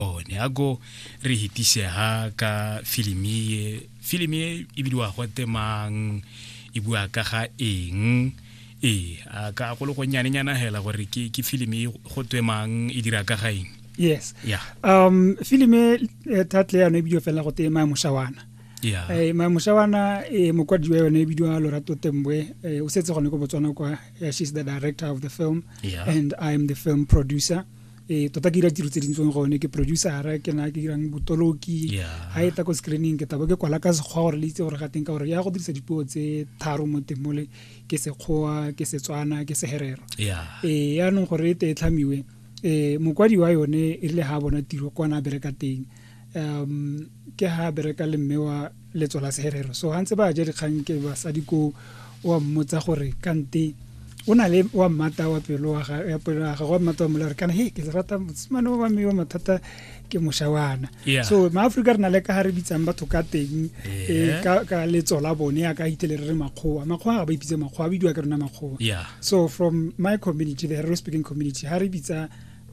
one a ko re hetisega ka filimi e filimi e e bidiwa go temang e bua ka ga eng ee a ka go le gonnyanenyana hela gore ke ke filimi e go twemang e dira ka ga eng yes yeah. um filimi e eh, tatle yano e bidio fela go tema moshawana yeah. eh, ma moshawana e eh, mokwadi wa yone e bidiwa lorato tembwe eh, o setse gone ko botswana kwa eh, she's the director of the film yeah. and i am the film producer ee tota ke dira tiro tse dintseng gone ke producera ke na ke dirang botoloki ga e tla ko screening ke tabo ke kwala ka sekgwa gore le itse gore ga teng ka gore ya go dirisa dipuo tse tharo mo teng mole ke sekgowa ke setswana ke seherero ee yaanong gore e te e tlhamiwe um mokwadi wa yone e rile ga a bona tiro kwa na bereka teng um ke ha bereka le mme wa letso la seherero so ha ntse ba ja dikgang ke basadi ko wa mmotsa gore kante o na le wa mmata wa pelo wa ga ya pelo ga wa mmata wa mola re kana he ke rata motsimane wa me wa mathata ke moshawana so ma Africa re na le ka ha re bitsang batho ka teng e ka ka letso la bone ya ka itele re makgowa makgowa ga ba ipitse makgowa bidiwa ka rona makgowa so from my community the Herero speaking community ha re bitsa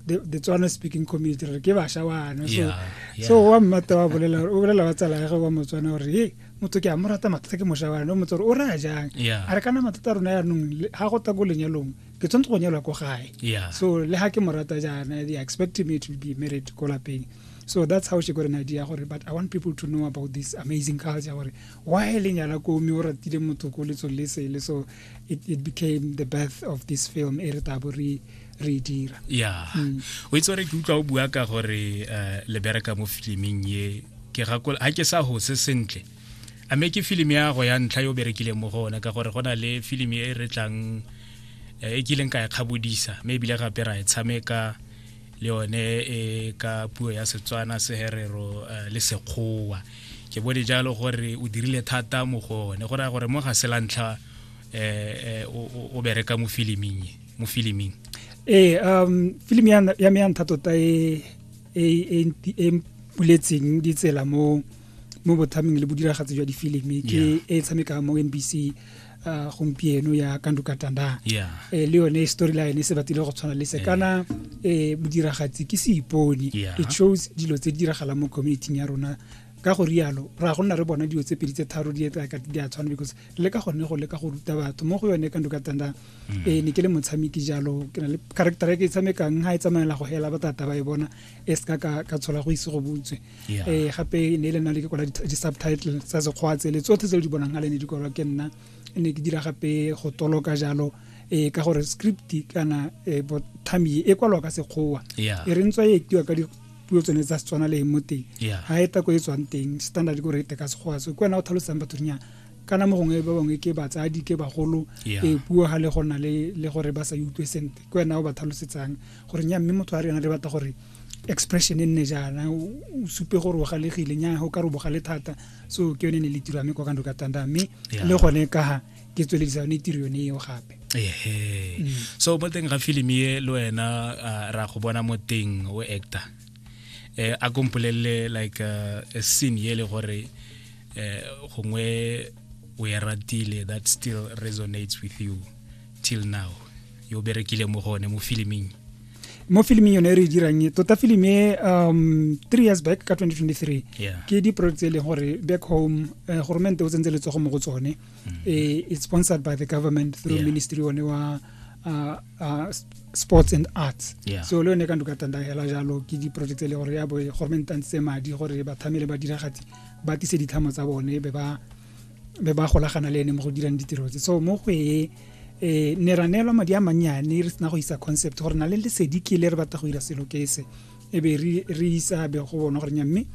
the, the Tswana speaking community re ke basha wana so yeah, yeah. so wa mmata wa bolela o bolela wa tsala ya wa motswana gore hey motho ke a mo rata mathata ke mosha wana o motho o ra jang yeah. a re kana mathata rona ya nong ha go ta go lenyalong ke tsontse go nyalwa ko gae yeah. so le ha ke mo rata jana they expect me to be married ko lapeng so that's how she got an idea gore but i want people to know about this amazing culture gore why le nyala ko mme o ratile motho ko letsong le sele so it, it became the birth of this film e re tabo re re dira yeah mm. o itse re ke utlwa o bua ka gore uh, le bereka mo filming ye ke gakola ha ke sa hose sentle a me ke film ya go ya ntlha yo berekile mo gona ka gore gona le film e re tlang eh, e kileng ka e kgabodisa me ebile gape ra e tshameka le yone e ka puo ya setswana seherero eh, le sekgowa ke bone jalo gore o dirile thata mo go one go raya gore mo ga se la ntlha eh, eh, o bereka mo filiming mo filiming ee um film ya me ya ntha tota e e, e, e mpuletseng ditsela mo mo bothaming le bodiragatsi jwa difilimi ke e tshamekang mo nbc uh, gompieno ya kandukatanda yeah. eh, le yone storyline se batile go tshwana le se eh. kana eh, modiragatsi ke seipone yeah. it shows dilo tse di diragalang mo communityng ya rona ka go rialo ra go nna re bona dilo tse pedi tse tharo di etsa ka di a tshwana because le ka gone go le ka go ruta batho mo go yone ka ndoka tanda mm. eh ne ke le motshameki jalo ke na le character e ke e tshamekang ha e tsamaela go hela batata ba e bona e ska ka ka tshola go ise go butswe yeah. eh gape ne le na le ke kwala di-subtitle tsa sekgwa tsele tsotlhe tse di bonang ale ne di kwalwa ke nna ne ke dira gape go toloka jalo eh ka gore script kana eh, bothami e kwalwa ka sekgowa yeah. e re ntswa e ektiwa ka puo tsone tsa setswana le mo teng ga e tako e tswang teng standard ko rete ka sekgowa so ke wena o tlhalosang batho dinyana kana mo gongwe ba bangwe ke batsadi ke bagolo e puo ga le gona le gore ba sa utlwe sente ke wena o ba tlhalosetsang gore nya mme motho a rena le batla gore expression e nne jaana o supe gore o galegile nya o ka re o bogale thata so ke yone e ne le tiro ya me kwa kando ka tanda mme le gone ka ga ke tsweledisa yone tiro yone eo gape ehe mm. so mo teng ga filimi e le wena ra go bona mo teng o actor eh a kompolelele like uh, a scene ye le gore eh gongwe o e ratile that still resonates with you till now yo o berekile mo gone mo filiming mo filiming yone e re e dirang e tota film e um three years back ka 2023 yeah. ke di-project tse e leng gore back home uh, eh, goromente o tsentse letsogo mo go tsone mm. e, it's sponsored by the government through yeah. ministry one wa uh, uh, sports and arts yeah. so le yone ka nduka tanda hela jalo ke di-project tse e le gore ya bo goromente a ntse madi gore bathamele ba diragatsi ba tise ditlhamo tsa bone be ba be ba golagana le ene mo go dirang ditiro tse so mo go e eh ne ra neelwa madi a mannyane re sena go isa concept gore na le lesedi ke le re batla go dira selo ke se e be re isa be go bona gore nya mme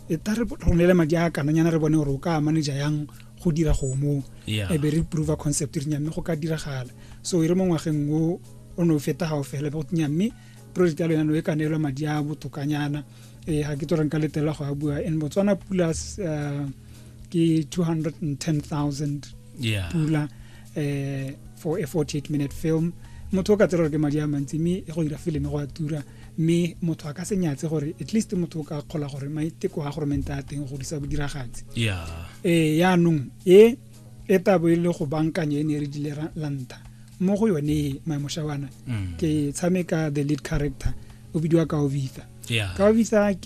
e ta re romele madi a kananyana re bone gore o ka manager yang go dira go mo e be re prove concept re nya mme go ka diragala so e re mo ngwageng o o ne o feta ga o fela go nya mme project ya lona no e ka neelwa madi a botokanyana eh ga ke tlo reng ka letela go a bua and Botswana pula eh, ke 210000 yeah. pula eh for a 48 minute film motho o ka tsela gore ke madi a mantsi mme go dira fileme go a tura mme motho a ka se nyatse gore at least motho o ka kgola gore maiteko a goromente a teng go disa bodiragatsi ee yaanong e e tabo e le go bankanya e ne re dile lanta mo go yone maemošawana mm. ke tshameka the lead character o bidiwa ka ovitha ka ovitha ke